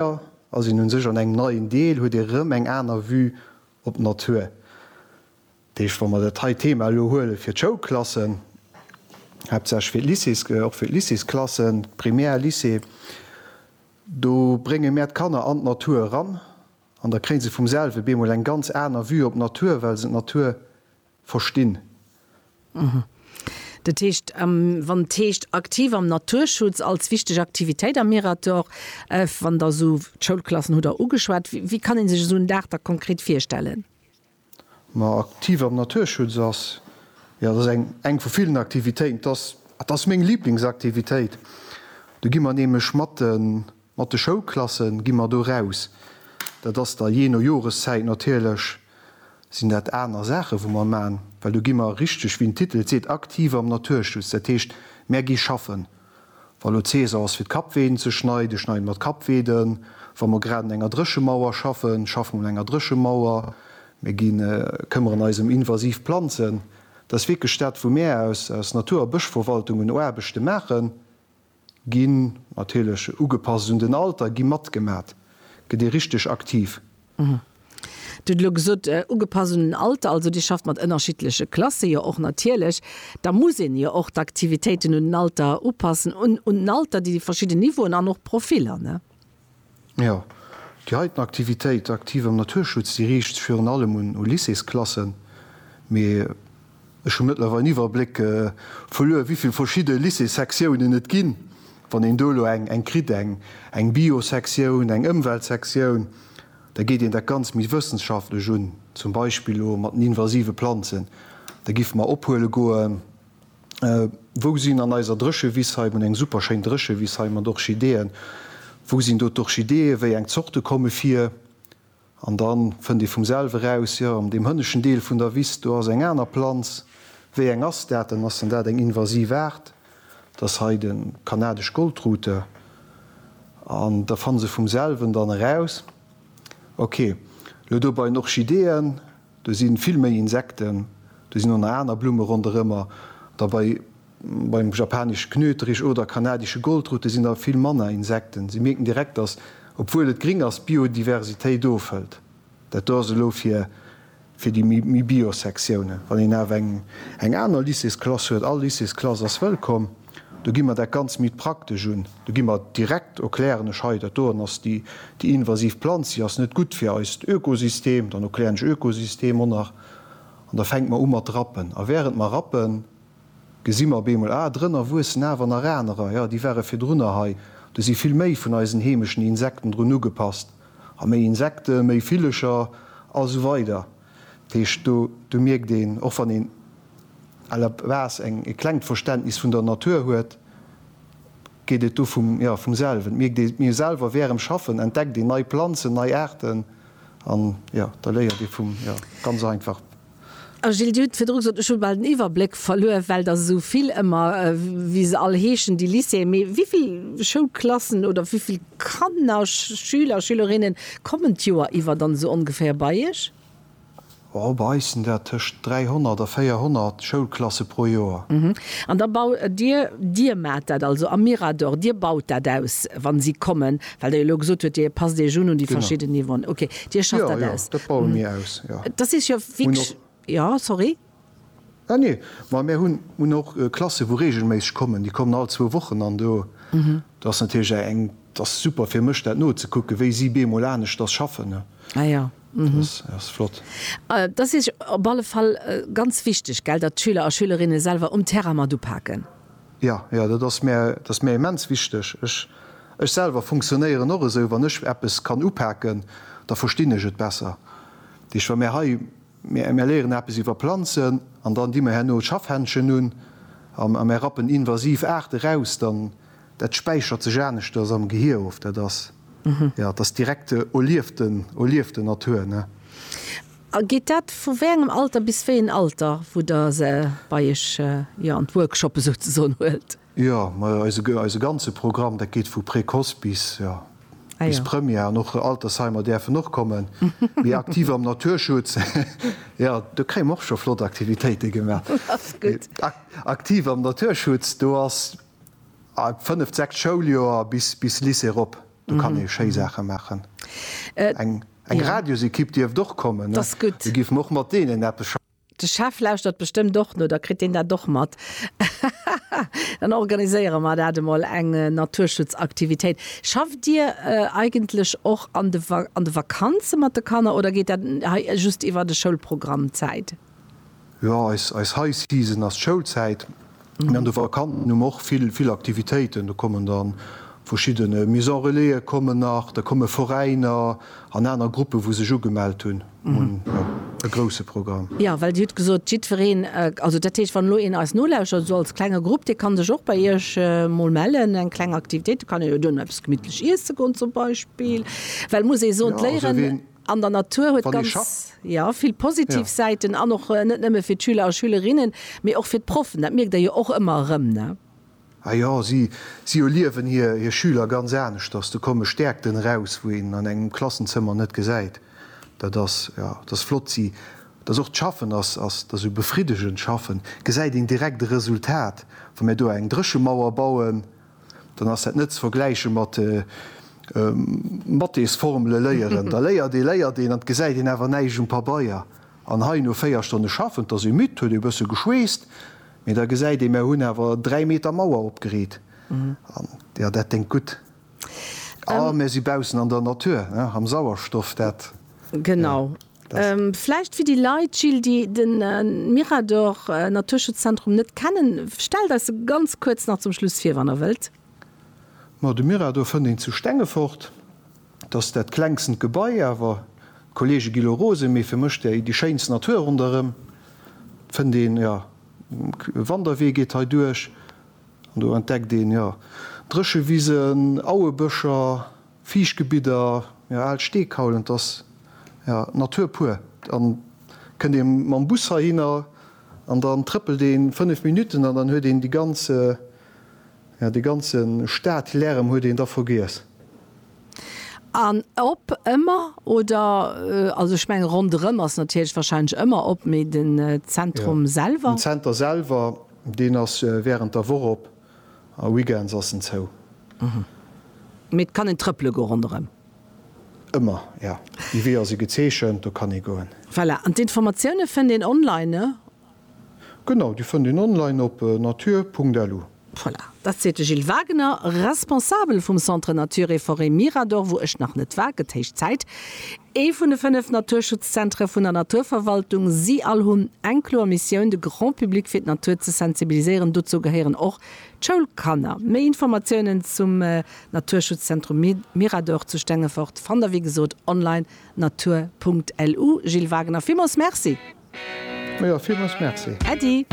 Da ass een un sech an engem neien Deel, huet ee rëm eng aner Vue op d'Natur. Dat heescht, wa mer dat hei Thema elo huelen, fir d'Schoulklassen, haaptsächlech fir d'Lycées, och fir d'Lycéesklassen, Primaire, Lycée, do brénge mär d'Kanner an d'Natur eran an da kréie se vum selwe bemol eng ganz aner Vue op d'Natur, well se d'Natur verstinn. Dat heescht, wann et heescht aktiv am Naturschutz als wichteg Aktivitéit am Mirador, wann Der esou, d'Schoulklassen hutt Der ugeschwat, wéi kann ee sech esou en Dag da konkret virstellen? Ma aktiv am Naturschutz ass, jo, dat ass eng, eng vu villen Aktivitéiten. Et ass, et ass meng Liblingsaktivitéit. Do gi mer nämlech mat de. Mat de Schoulklasse gi mer do raus. Dat ass da jee no Joreszäit natierlech, sinn dat aner Saache wou mer maachen, well do gi mer richteg, wéi den Titel et seet, aktiv am Naturschutz. Dat heescht, mär gi schaffen. Wa elo d'Saison ass fir d'Kappweeden ze schneiden, schneide mer d'Kappweeden. Wa mer grad un enger Dréchemauer schaffen, schaffe mer un enger Dréchemauer. Mir gi këmmeren eis ëm invasiv Planzen. Dat ass wierklech dat wou mär aus Natur a Bëschverwaltung un Aarbechte maachen. Ginn, natierlech ugepasst un den Alter, gi matgemat, gëtt ee richteg aktiv. Dir hutt elo gesot, ugepasst un den Alter, also Dir schafft mat ënnerschiddleche Klassen, jo och natierlech. Da muss een jo och d'Aktivitéiten un den Alter upassen, un den Alter, déi verschidden Niveauen an och d'Profiller, ne? Jo, déi heiten Aktivitéit Aktiv am Naturschutz, déi riicht sech virun allem un Lycéesklassen, mee ech hu mëttlerweil en Iwwerbléck verluer, wéi vill verschidde Lycéessektiounen et ginn, wann een do elo eng kritt, eng Biosektioun, eng Ëmweltsektioun, da geet een dat Ganzt méi wëssenschaftlech un, zum Beispill elo mat den invasive Planzen, da giffe mer ophuele goen. Wou sinn an eiser Dréchewiss, hei hu mer eng super schéin Dréchewiss hei mat Orchideeën, wou sinn do d'Orchideeë, wéi eng Zorte komme vir? An da fënnt ee vum selwe raus, jo, an deem hënneschten Deel vun der Wiss, do ass eng aner Planz. Wéi eng ass dat? Dann ass dann dat eng invasiv Aart, dat ass hei de kanadesch Goldrute. An da fanne se vum selwen dann eraus, ok, elo do bei den Orchideeën, Do sinn vill méi Insekten, do sinn oner aner Blumme ronderëmmer, da bei beim Japanesch Knöterich oder Kanadische Goldrute sinn der vill manner Insekten. Si mierken direkt, dass obwuel et gring ass, d'Biodiversitéit ofhëlt. Dat do ass elo fir fir déi méi méi Bio-Sektiounen. Wann een awer eng eng aner Lycéesklass huet, all Lycéesklass ass wëllkomm. Do gi mer dat Ganz méi praktesch un. Do gi mer direkt au klären ech, hei, dat doen ass déi invasiv Planz, si ass net gutt fir eist Ökosystem, dann au klären ech Ökosystem och nach. An da fänke mer u mat rappen. A während mer rappen, gesi mer op eemol, ah, drënner wuessen awer nach anerer, jo, déi ware virdrunner hei. Do si vill méi vun eisen heemeschen Insekten drun ugepasst. A méi Insekten, méi Villecher a sou weider. Dat heescht, do, do mierkt een, och wann een à la base eng, e klengt Verständnis vun der Natur huet, geet et do vum, jo, vum selwen. Et mierkt ee jo selwer, währem Schaffen entdeckt een nei Planzen, nei Aarten an, jo, da léiert ee vum, jo, ganz einfach. A Gilles, Dir hutt virdru gesot, ech hu bal den Iwwerbléck verluer, well der esou vill ëmmer, wéi se all heeschen, déi Lycéeën, mee wéi vill Schoulklassen oder wéi vill, Kanner, Schüler, Schülerinnen kommen d'Joer iwwer dann esou ongeféier bei iech? Oh, bei eis sinn dat tëscht 300 a 400 Schoulklasse pro Joer. An da bau dir, dir maacht dat also am Mirador, dir baut dat aus, wa si kommen, well der jo elo gesot huet, dir passt iech un un déi verschidden Niveauen. Okay, dir schafft dat aus. Jo, jo, dat baue mir aus, jo. Dat ass jo wierklech, jo, sorry. Ah nee, ma mär hunn hunn och Klassen, wou reegelméisseg kommen. Déi kommen all zwou Wochen an do ass natierlech eng, dat ass super fir mech, dat nozekucken, wéi si bemol aneschters schaffen. Ah jo. Dat ass flott. Dat ass op alle Fall ganz wichteg, gell, datt d'Schüler a Schülerinne selwer um Terrain mat upaken. Jo, jo, dat ass mär, dat ass mär immens wichteg. Ech, ech selwer funktionéieren och esou, wann ech eppes kann upaken, da verstinn ech et besser. Dat heescht, wa mär hei. Mär léieren eppes iwwer Planzen an dann di mer herno d'Schaffhännchen un a mär rappen invasiv Aarte raus. Dann, dat späichert sech aneschters am Gehir of. Dat ass, jo, dat ass direkt olieften, olieften Natur, ne? A geet dat vu wéi engem Alter bis wéi een Alter, wou Der se bei Iech, jo, an d'Workshoppe souzesoen huelt? Jo, eise ganze Programm, dat geet vu Précoce bis, jo, bis Première. An och Altersheimer däerfen och kommen, mee aktiv am Naturschutz, jo, do kréie mer och scho flott Aktivitéite gemaach. Aktiv am Naturschutz, do ass fënneft, sechst Schouljoer bis Lycée erop, do kann ee schéi Saache maachen. Eng Radiosekipp dierft och kommen, do géife mer och mat deenen eppes schaffen. De Chef lauschtert bestëmmt och no, da kritt deen dat och mat. Hahaha, dann organiséiere mer dat emol, eng Naturschutzaktivitéit. Schafft Dir eigentlech och an de an de Vakanze mat de Kanner oder geet dat hei just iwwer de Schoulprogramm Zäit? Jo, eis High Season ass d'Schoulzäit. Mir an de Vakanten hu mer och vill, vill Aktivitéiten. Do kommen da verschiddene Maison-relaise kommen nach, da komme Veräiner an aner Gruppen, wou sech ugemellt hunn. Mir hunn e grouse Programm. Jo, well Dir hutt gesot, jiddwereen, also dat heescht, wann elo een eis nolauschtert, esou als klenge Grupp, dee kann sech och bei Iech emol mellen, eng kleng Aktivitéit. Da kann een jo duerno eppes gemittlech iesse goen zum Beispill, well muss ee soen, d'Léieren. An der Natur huet ganz jo vill positiv Säiten an och net nëmme fir d'Schüler a Schülerinnen, mee och fir d'Proffen. Dat mierkt Der jo och ëmmer erëm, ne? A jo, si si erliewen hir hir Schüler ganz aneschters. Do komme Stäerkten eraus, wou een an engem Klassenzëmmer net gesäit. Dat ass jo dat ass flott. Si dass och d'Schaffen ass ass dass e befriddegend Schaffen, gesäit een direkt e Resultat. Wa mir do eng Dréchemauer bauen, dann ass dat net ze vergläiche mat Mathésformele léieren. Da léiert ee, léiert een an et gesäit een awer näischt um Pabeier. An hei no véier Stonne schaffen, et ass ee midd, huet ee bësse geschweesst, mee da gesäit ee, mär hunn awer dräi Meter Mauer opgeriit. An jo, dat déngt gutt. A mär si baussen an der Natur, am Sauerstoff, dat, jo. Genau. Vläicht fir déi Leit, Gilles, déi de Mirador Naturschutzzentrum net kennen, stellt eis e ganz kuerz nach zum Schluss vir, wann Der wëllt. Ma de Mirador fënnt een zu Stengefort. Dat ass dat klengsten Gebai, awer d'Kollege Gilles Rose, mee fir mech déi schéinst Natur ronderëm fënnt een. Jo, e Wanderwee geet hei duerch an do entdeckt een, jo, Dréchewisen, Auebëscher. Fiichtgebidder, jo al Steekaulen, 't ass jo d'Natur pur. Dann kënnt ee mam Bus heihinner an dann trëppelt ee fënnef Minutten an dann huet een déi ganze, jo dee ganze Stadlärem huet een da vergiess. An op ëmmer oder, also ech menge ronderëm ass natierlech wahrscheinlech ëmmer op, mee den Zentrum selwer? Den Zenter selwer, deen ass während der Woch op. A Weekends ass en zou? Mee et kann een trëppele go ronderëm? Ëmmer, jo. Déi Weeër si gezeechent, do kann ee goen. Voilà, an d'Informatioune fënnt een online, ne? Genau, déi fënnt een online op nature Punkt lu. Voilà, dat seet de Gilles Wagener, Responsabel vum Centre Nature et Forêt Mirador, wou ech nach net war. Gëtt héich Zäit. Ee vun de fënnef Naturschutzzentere vun der Naturverwaltung. Si all hunn eng kloer Missioun, de Grand Public fir d'Natur ze sensibiliséieren. Dozou gehéieren och d'Schoulkanner. Méi Informatiounen zum Naturschutzzentrum Mirador zu Stengefort fannt der wéi gesot online, natur.lu. Gilles Wagener, villmools Merci! Majo, villmools Merci! Äddi!